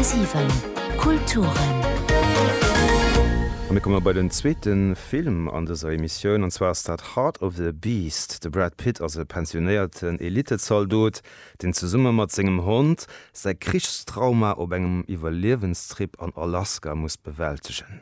10,7 Kulturen. A mir komme bei den zweete Film an dëser Emissioun, an zwar ass dat Heart of the Beast. De Brad Pitt ass e pensionéierten Elittezaldot, deen zesumme mat sengem Hond säi Krichstrauma op engem Iwwerliewenstrip an Alaska muss bewältegen.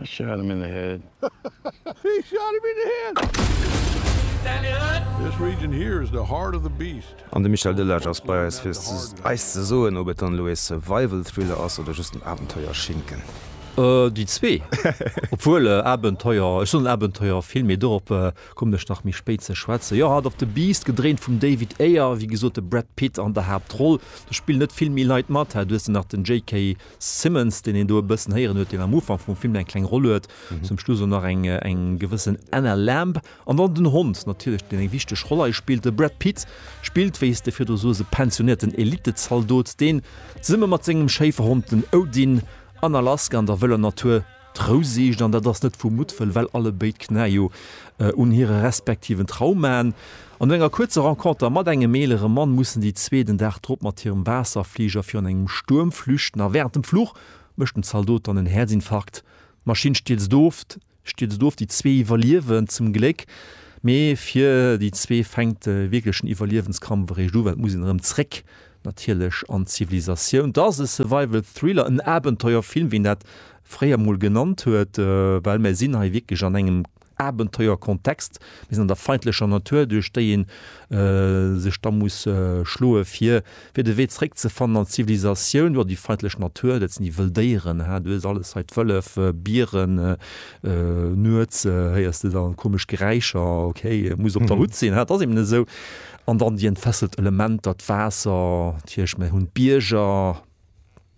I shot him in the head. I shot him in the head. This region here is the heart of the beast. An de Michel Delage ass bei eis fir eis ze soen ob et dann elo ee Survival Thriller ass oder just en Abenteuerschinken. Déi zwee, obwuel Abenteuer, ech soen Abenteuerfilm, mee dorop kommen ech nach méi spéit ze schwätzen. Jo, Heart of the Beast, gedréint vum David Ayer, wéi gesot de Brad Pitt an der Haaptroll. Do spillen net vill méi Leit mat, du hues nach den JK. Simmons, deen een do e bëssen héieren huet, deen am Ufank vum Film eng kleng Roll huet, zum Schluss elo nach eng eng gewëssen Anna Lamb. An dann den Hond natierlech, deen eng wichteg Roll hei spillt. De Brad Pitt spillt, wéi s de virdru soos, e pensionierten Elittezaldot, deen zesumme mat sengem Schéiferhond, den Odin, an Alaska an der wëller Natur, D'Rou sicht, an dat ass net vu Muttwëll, well allebéid Knä jo un hire respektiven Traumaen an no enger kuerzer Renconter mat engem eelere Mann mussen déi zwee den Dag drop mat hirem Waasserfliger virun engem Stuerm flüchten. A wärend dem Fluch mécht dem Zaldot dann en Häerzinfarkt, d'Maschinn stierzt of, stierzt of. Déi zwee iwwerliewen zum Gléck, mee fir déi zwee fänkt de wierklechen Iwwerliewenskampf eréischt u, well et muss een erëm zréck Natierlech an Zivilisatioun. Dat ass e Survival Thriller, en Abenteuerfilm, wéi een dat fréier mol genannt huet, well mär sinn hei wierklech an engem Abenteuerkontext. Mir sinn an der feindlecher Natur, duerch déi ee sech da muss schloe fir fir de Wee zeréckzefannen an d'Zivilisatioun. Jo, déi feindlech Natur, dat sinn déi wëll Déieren. Haa, du hues alles hei, d'Wëllef, Bieren, nuets héiers de dann komesch Geräischer, okay, muss op der Hutt sinn, haa, dat ass eben esou. An dann déi entfesselt Elementer, d'Waasser, d'Hierscht, mir hunn d'Bierger,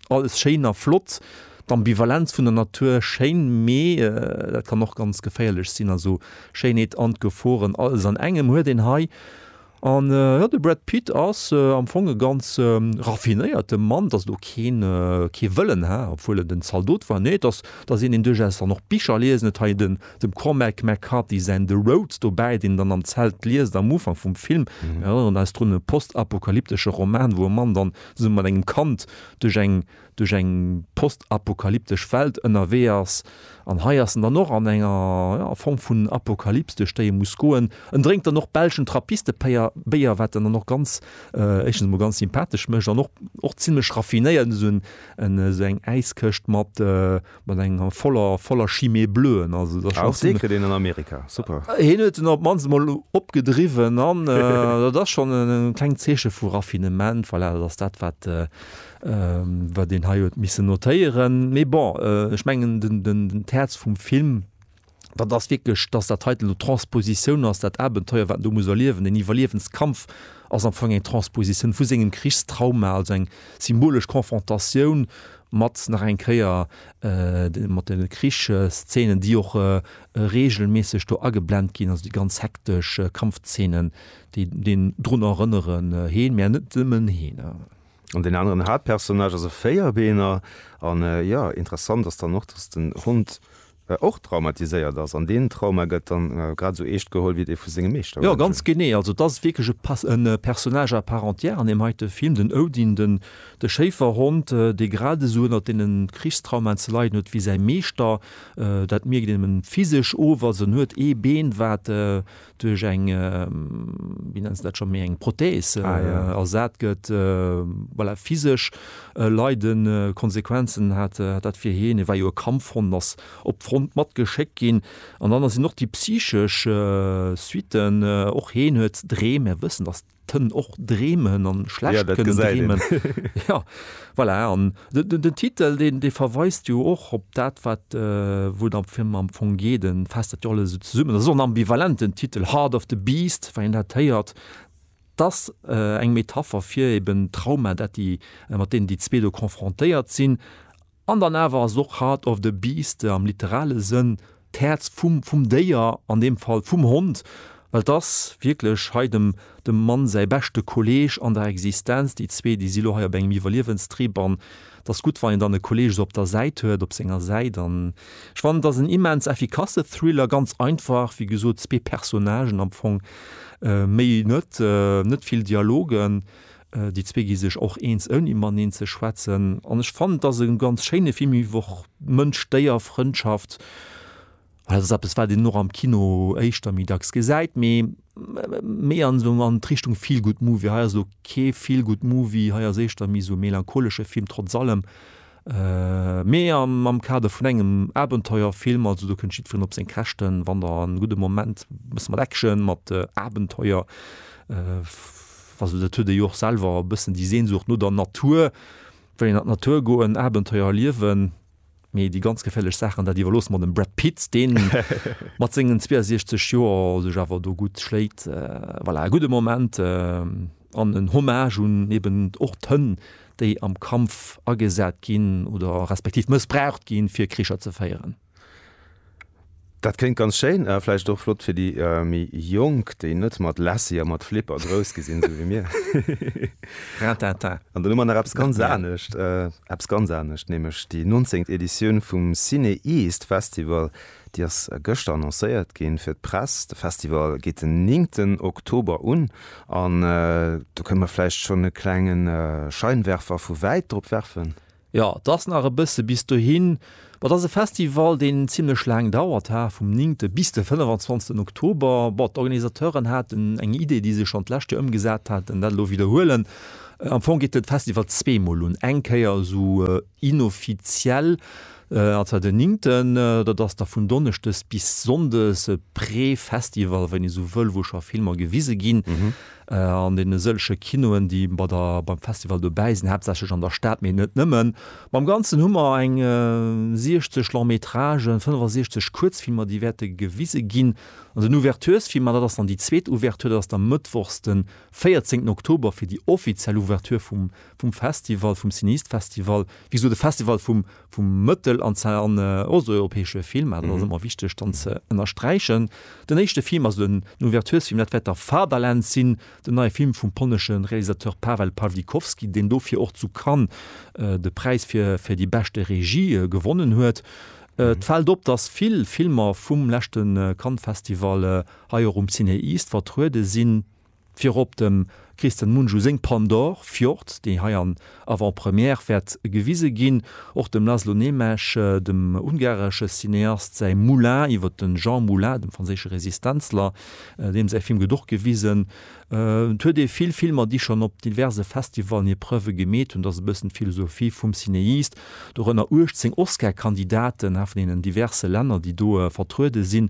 alles schéin a flott. D'Ambivalenz vun der Natur schéin, mee dat kann och ganz geféierlech sinn, also Schéinheet an d'Geforen alles an engem huet een hei. An jo, de Brad Pitt ass am Fong e ganz raffinéierte Mann, et ass elo keen, kee Vëllen, obwuel en en Zaldot war, nee, et ass, et ass een, deen duerchaus dann och Bicher liest, en huet hei den, Dem Cormac McCarthy säin The Road dobäi, deen dann am Zelt liest am Ufank vum Film. Mir erënneren eis drun, e postapokalyptesche Roman, wou e Mann dann zesumme mat engem Kand duerch eng duerch eng postapokalyptesch Welt ënnerwee ass. An hei ass en dann och an enger, ja, Form vun Apokalyps, duerch déi e muss goen. En drénkt dann och belschen Trappistepéier, Béier, wat en dann och ganz, éischtens emol ganz sympathesch mécht an och, och zimmlech raffinéiert, esou en, esou eng Äiskëscht mat, mat enger voller voller chimé bleuen also den Amerika super hin huet den op man mal opgedriwen an dat das schon en kleng Zeeche vu raffinement fall voilà, dass dat wat äh, wat den hei huet missen notéieren mé bon äh, ech mengen den den den d'Häerz vum Film dat ass wierklech, dass dat heiten elo d'Transpositioun ass, dat Abenteuer, wat en do muss erliewen, deen Iwwerliewenskampf ass am Fong eng Transpositioun vu sengem Krichstrauma, also eng symbolesch Konfrontatioun mat, nach eng Kéier, mat de Krichsszenen, déi och reegelméisseg do ageblent ginn, also déi ganz hektesch Kampfszenen, déi een drun erënneren, heen, mä net nëmmen heen. An deen aneren Haaptpersonnage ass e Véierbeener, an, jo, interessant ass dann och, dass den Hond och traumatiséiert ass, an deen Trauma gëtt dann grad esou eescht geholl wéi dee vu sengem Meeschter. Jo, ganz genee. Also et ass wierklech e Personnage à part entière an deem heite Film, den Odin, den, de Schéiferhond, dee grad esou ënnert deene Krichstraumaen ze leiden huet wéi säi Meeschter. Dat mierkt een him physesch of, also en huet ee Been, wat duerch eng, wéi nenns de dat, scho méi eng Prothees ersat gëtt, voilà, physesch leide Konsequenzen hat dat fir hien. Hie war jo e Kampfhond, ass op d'Front matgeschéckt ginn. An dann sinn och déi psychesch Suitten, och hien huet Dreem, mär wëssen, dass. kënnen och dreemen an schlecht kënnen dreemen. Ja voilà an den Titel deen dee verweist jo och op dat wat wou et am Film am Fong geet. E faasst dat jo alles esou zesummen. Dat ass och en ambivalenten Titel, Heart of the Beast, wann een dat héiert. Et ass eng Metapher fir eeben Trauma dat déi mat deenen déi zwee do confrontéiert sinn. An dann awer ass och Heart of the Beast am literale Sënn d'Häerz vum, vum Déier, an deem Fall vum Hond, well et ass wierklech hei dem, dem Mann säi beschte Kolleeg an der Existenz. Déi zwee, déi si lo hei op engem Iwwerliewenstrip an et ass gutt, wann een dann e Kolleeg esou op der Säit huet, op senger Säit. An ech fannen, et ass en immens effikasse Thriller, ganz einfach, wéi gesot, zwee Personnagen am Fong, méi net, net vill Dialogen, Déi zwee gi sech och eens ouni maneen ze schwätzen. An ech fannen et ass e ganz schéine Film iwwer Mënsch-Déier-Frëndschaft. Well dat ass eppes, wat een och am Kino éischter méi dacks gesäit, mee méi an esou an d'Richtung Feel-Good-Movie. Hei ass elo kee Feel-Good-Movie, hei ass éischter méi esou e melancholesche Film, trotz allem. Mee am Kader vun engem Abenteuerfilm, also do kënnt jiddferen op seng Käschten, wann der en gudde Moment e bësse mat Action, mat Abenteuer, also dat huet ee jo och selwer e bëssen déi Sehnsucht no der Natur, wëll een an d'Natur goen, Abenteuer erliewen, mee déi ganz geféierlech Saachen, dat iwwerloosse mer dem Brad Pitt, deen mat sengen 62 Joer sech awer do gutt schléit. Voilà, e gudde Moment an en Hommage un eben och d'Hënn, déi am Kampf agesat ginn oder respektiv mëssbraucht ginn, fir Kricher ze féieren. Dat kléngt ganz schéin a vläicht och flott fir déi méi Jonk, déi net mat Lassie a mat Flipper grouss gi sinn, esou wéi mir. Rintintin. An dann hu mer nach eppes ganz anescht, eppes ganz anescht, nämlech déi 19. Editioun vum Ciné East Festival. Déi ass gëschter annoncéiert ginn fir d'Press. De Festival geet den néngten Oktober un an do kënne mer vläicht schonn e klenge Scheinwerfer vu wäit drop werfen. Jo, et ass nach e bësse bis dohin. Bon, et ass e Festival, deen zimmlech laang dauert hat, vum néngte bis de 25 Oktober. Bon, d'Organisateuren haten eng Idee, déi se schonn d'lescht Joer ëmgesat haten, dat elo widderhuelen. Am Fong geet de Festival zweemol un, eng Kéier esou Inoffiziell ass dat den Ninkten, dat ass da vun Donneschdes bis Sonndes e Pré-Festival, wann ee sou wëll, wou scho Filmer gewise ginn an deene sëllege Kinoen, déi bei der, beim Festival dobäi sinn, haaptsächlech an der Stad, mee net nëmmen. Am Ganzen hu mer eng 60 Long-Métragen, 65 Kuerzfilmer, déi wäerte gewise ginn. An den Ouvertursfilm, an dat ass dann déi zweet Ouverture, dat ass da mëttwochs de 14 Oktober fir déi offiziell Ouverture vum Vum Festival, vum Cineastfestival, wéi gesot e Festival vum vum mëttel an ze an osteuropäesche Film, dat ass ëmmer wichteg dann ze ënnersträichen. Den éischte Film, also den Ouverturesfilm, dat wäert da Fatherland sinn, den neie Film vum polnesche Realisateur Paweł Pawlikowski, deen dofir och zu Cannes de Präis fir fir déi beschte Regie gewonnen huet. Et fält op, datt vill Filmer vum leschte Cannes-Festival hei och um Ciné-East vertruede sinn. Virop dem Kristen Mungiu seng Pandore, Fjord, déi hei an Avant-Première wäert gewise ginn. Och dem Laszlo Németh, dem ungaresche Cineast, säi Moulin iwwer de Jean Moulin, dem franséische Resistenzler, deem säi Film gëtt och gewisen. Et huet ee vill Filmer, déi schonn op diverse Festivallen hir Preuve gemeet hunn. Et ass e bëssen d'Philosophie vum Cinéist. Dorënner 18 Oscar-Kandidaten, haart vun deenen diverse Länner, déi do vertruede sinn.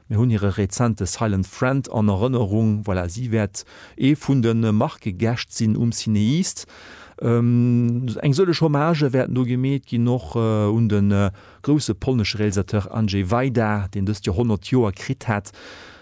Mir hunn hire rezente Silent Friend an Erënnerung. Voilà, si wäert ee vun de Marquegäscht sinn um Cinéist. Eng sëlleg Hommagë wäerten do gemeet ginn, och un de grousse polnesche Realisateur Andrzej Wajda, deen dëst Joer 100 Joer kritt hätt,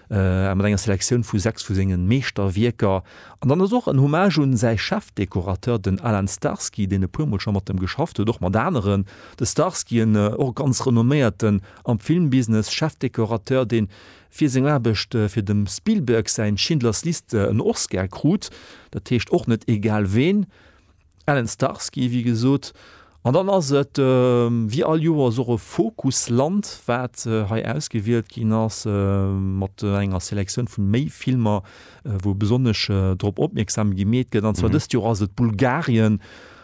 mat enger Selektioun vu sechs vu senge Meeschterwierker. An dann ass och en Hommage un säi Chefdekorateur, den Alan Starsky, deen e puermol scho mat em geschafft huet, och mat aneren. De Starsky, en och ganz renomméierte Am Filmbusiness Chefdekorateur, dee fir seng Aarbecht fir dem Spielberg säin Schindlers Liste en Oscar krut, dat heescht och net egal ween. Allen Starsky, wéi gesot. An dann ass et wéi all Joers och e Fokusland, wat hei ausgewielt ginn ass, mat enger Selektioun vun méi Filmer, wou besonnesch drop opmierksam gemeet gëtt. An zwar dëst Joer ass et Bulgarien.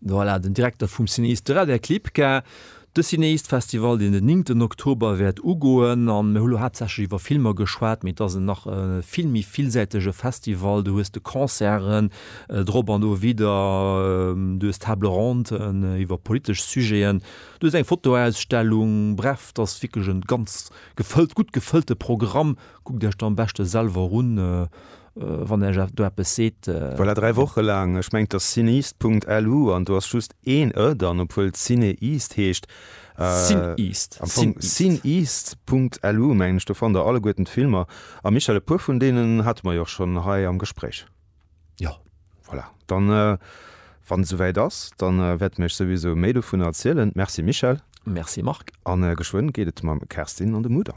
Voilà, den Direkter vum Cinéiste de Radec Lipka. De Cinéistefestival, deen den néngten Oktober wäert ugoen, an mir hu lo haaptsächlech iwwer Filmer geschwat, mee et ass en nach e vill méi villsäitege Festival. Du hues de Concerten drop an dowidder, du hues Table ronden iwwer politesch Sujeten, du hues eng Fotoausstellung, bref, et ass wierklech e ganz gefëllt, gutt gefëllte Programm. Kuckt Iech dat am beschte selwer un. wann Dir eis do eppes seet. Voilà, dräi Woche laang. Ech mengt dass Cineast Punkt LU an do ass just een e dann, obwuel et Cineast heescht. Cineast. Am Fong Cineast Punkt LU mengen ech, do fannt Der alleguerten d'Filmer. A Michel, e puer vun deenen hate mer jo och schonn hei am Gespréich. Jo. Voilà, dann, wann et esouwäit ass, dann wäerte mir Iech souwisou méi dovunner erzielen. Merci Michel. Merci Marc. A geschwënn geet et mam Kerstin an de Mudam.